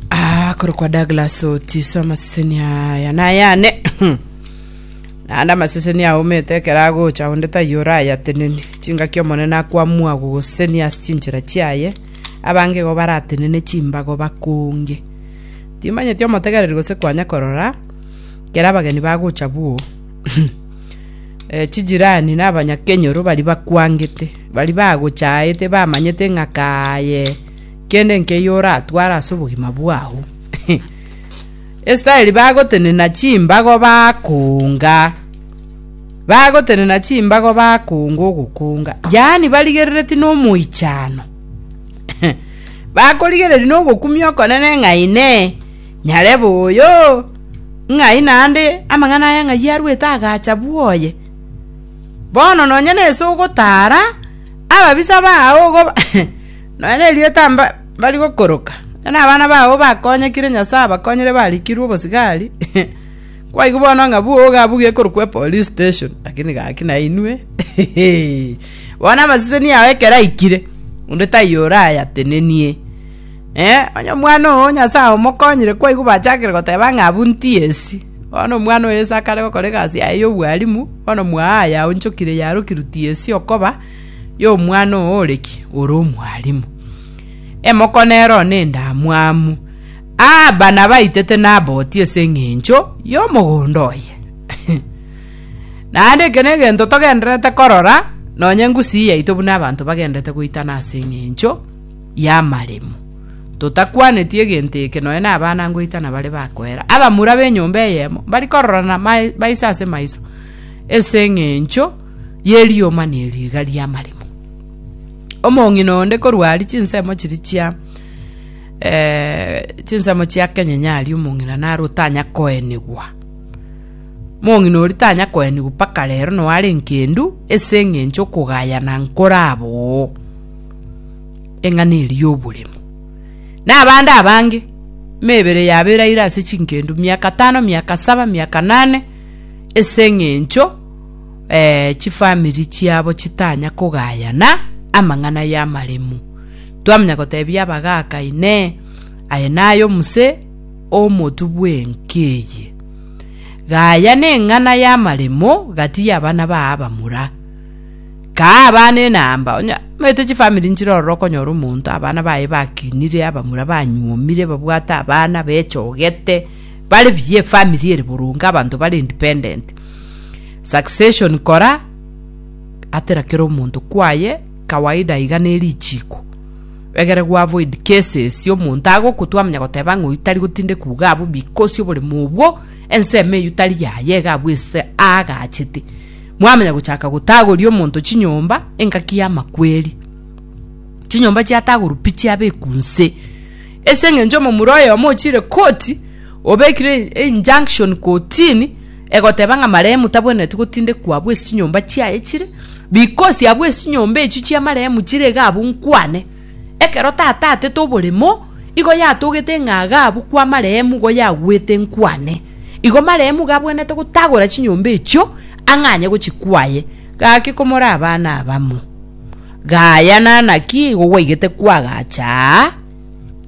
Ah, korokwa Douglas Otiso amaseseni aya nayane naende amaseseni aumete ekero agocha onde taiyo orayateneni chingaki omonene akwamua gogoseseni ase chinchera chiaye abange igo baratenene chimbago bakonge timanyeti omotegereri gose kwanya korora kera abageni bagocha buo Eh, chijirani na abanyakenyoro bari bakwangete bari bagochaete bamanyete ng'a kaye Kende nkeiyo oratware ase obogima bwao. Israeli bagotenena chimbago bakoonga, bagotenena chimbago bakoonga ogokoonga, yaani barigerereti nomoichano bakorigereria nogokumia okonene ng'a inee, nyarebe oyo, ng'ai naende amang'ana aya ng'ai arwete agacha bwoye. Bono nonye nese ogotara ababisa bao ogoba Nonya nerio tibari gokoroka, nonya nabana babo bakonyekire Nyasae abakonyire barikirwe obosigari, kwaigwa bono ng'a bwoga abwo gekorokwa epolice station lakini gaki nainwe bono amaseseni yao ekero aikire onde taiyo orayatenenie. Onye omwana oo Nyasae omokonyire kwaigwa bachakire goteba ng'a abwo ntiyesi. Bono omwana oyo ase akare gokora egasi yaye ya obwalimu, bono mwao aye aonchokire yarokirwe tiyesi okoba, y'omwana oo ore ki? Ore omwalimu. Emoko nero nendamwamu. Aaba nabaitete Naboti ase eng'encho y'omogondo oye. Naende eke negento togendererete korora, nonye Gusii yaito buna abanto bagenderete goitana ase eng'encho y'amaremo. Totakwaneti egento eke nonye na abana ngoitana bare bakoera. Abamura b'enyomba eyemo mbari kororana maiso ase maiso ase eng'encho ye rioma ne riiga ri'amaremo. Omong'ina onde korwa aria chinsemo chiria chia eh, chinsemo chia kenyenya aria omong'ina naro otanya koenigwa. Mong'ina oria tanya koenigwa mpaka rero nao are nkendu ase eng'encho okogayana nkoraba oo eng'ana eria y'oboremo. Na abande abange, emebere yabo eraire ase chinkendu miaka tano, miaka saba, miaka nane, ase eng'encho eh, chifamiri chiabo chitanya kogayana amang'ana y'amaremu. Twamanya gotebia abagaaka, Inee, aye naye omuse omotu bw'enki eye? Gaya neng'ana y'amaremo gati y'abana baa abamura. Kaa abana enamba, onya omanyete chifamiri nchire ororo okonyora omonto abana baye bakinire, abamura banyuomire, babwate abana, bechogete, bare buya efamiri ere boronge, abanto bare independent. Succession kora atera kera omonto kwaye kawaida iga ne richiko egere gwa avoid cases ya omonto agoku twamanya goteba ng'a oyu tari gotindekwa iga abwo because oboremo obwo ensemo eywo tari yaye iga abwo ase aagachete mwamanya gochaka gotagoria omonto chinyomba engaki y'amakweri chinyomba chiatagorwa pi chiabekwa nse ase eng'encho omomura oyomo ochire koti obekire e- injunction kotini egoteba ng'a marehemu tabwenereti gotindekwa abwo ase chinyomba chiaye chire, bikosi abwo ase chinyomba echio chia marehemu chire iga abwo nkwane. Ekero tata atete oboremo, igo yatogete ng'a iga abwo kwa marehemu igo yagwete nkwane. Igo marehemu iga abwenerete gotagora chinyomba echio, ang'anye gochikwaye. Gaki komora abana abamo, Gayana naki igo gwaigete kwagacha aa.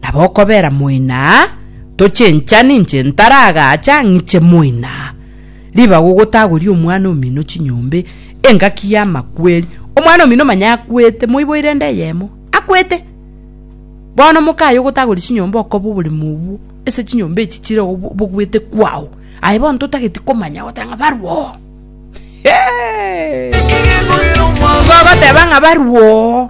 Nabo okobera moina, Tochenchani inche ntaragacha ng'iche moina. Ribaga ogotagoria omwana omino chinyombe, engaki y'amakweri. Omwana omino manya akwete, moiboire ende eyemo, akwete! Bono mokaye ogotagori chinyombe okoba oboremo obwo ase chinyombe echi chire obogwete kwao. Aye bono totageti komanya goteba ng'a barwe oo. Togoteba ng'a barwe oo.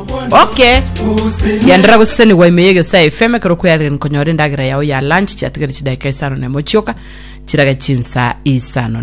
Okay. Yandera gosesenigwa ime yegio sa FM ekero kweyarire nkonyora endagera yao ya lunch chiatigari chidakika isano nemo chioka chirage chinsa isano